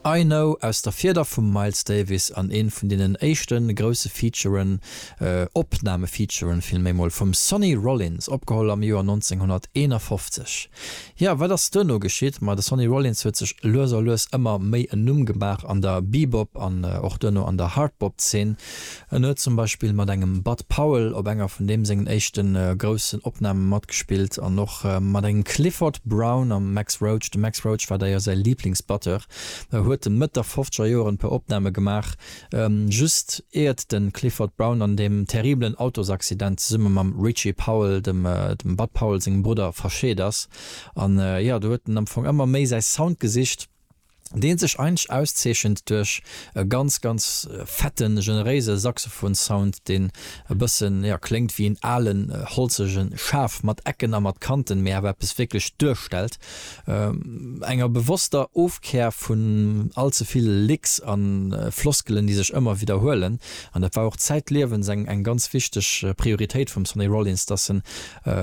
I Know aus der Fieder vum Miles Davis an een vun deenen éischte grousse Featuren, Opnamefeaturen villméi mol, vum Sonny Rollins, opgeholl am Joer 1951. Jo, wat ass duerno geschitt? Ma de Sonny Rollins huet sech lues a lues ëmmer méi en Numm gemaach an der Bebop an och duerno an der Hardbop-Zeen, En huet zum Beispill mat engem Bud Powell op enger vun deem sengen éischte groussen Opname matgespillt an och mat engem Clifford Brown a Max Roach. De Max Roach war däier säi Liiblingsbatteur, huet e Mëtt der fofzeger Joren e puer Opname gemaach, just iert de Clifford Brown an deem terribelen Autosaccident zesumme mam Richie Powell, dem Bud Powell sengem Brudder, verscheet ass. An jo, do huet en am Fong ëmmer méi säi Sound gesicht. deen sech eigentlech auszeechent duerch e ganz ganz fetten generéise Saxophonsound deen e bëssen jo kléngt wéi en alen holzegen Schaf mat Ecken a mat Kanten mee awer eppes wierklech duerstellt, enger bewosster Ofkär vun all ze vill Licks an Floskelen déi sech ëmmer widderhuelen an dat war och zäitliewens eng eng ganz wichteg Prioritéit vum Sonny Rollins dass en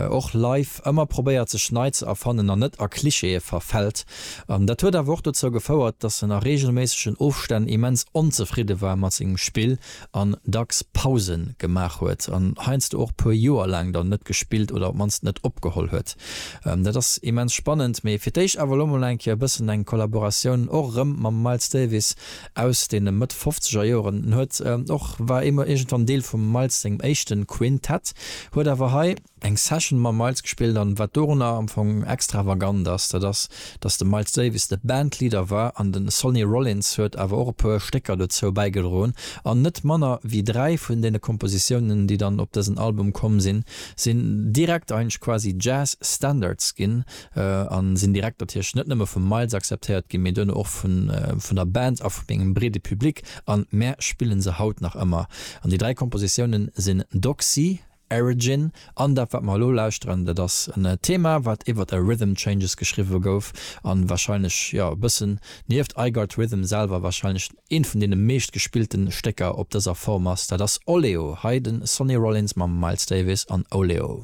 och live ëmmer probéiert sech nei ze erfannen an net a Klischeeë verfält. An dat huet awer och dozou gefouert, datt en a reegelméissegen Ofstänn immens onzefridde war mat sengem Spill an dacks Pause gemaach huet an heiansdo och puer Joer laang dann net gespillt oder op d'mannst net opgeholl huet. Dat ass immens spannend, mee fir d'éischt awer elo mol eng Kéier e bëssen eng Kollaboratioun och erëm mam Miles Davis aus deene Mëtt fofzeger Joeren. En huet och, war ëmmer iergendwann Deel vum Miles sengem éischte Quintett, huet awer hei, Eng Session mam Miles gespillt an wat dorunner am Fong extravagant ass, dat ass, dass de Miles Davis de Bandleader war an de Sonny Rollins huet awer och e puer Stécker dozou bäigedroen an net manner wéi dräi vun deene Kompositiounen, déi dann op dësen Album komm sinn, sinn direkt eigentlech quasi Jazz Standards ginn a sinn direkt natierlech net nëmme vum Miles akzeptéiert ginn, mee duerno och vun der Band a vu mengem breede Public an mär spille se haut nach ëmmer. An déi dräi Kompositiounen sinn Doxy, Erigin an dat wat mer elo lauschteren, dat ass en Thema wat iwwert e Rhythm Changes geschriwwe gouf an wahrscheinlech jo e bëssen nieft I Got Rhythm selwer wahrscheinlech eent vun deene meescht gespillten Stécker op dëser Form ass. Dat ass Oleo, hei den Sonny Rollins mam Miles Davis an Oleo.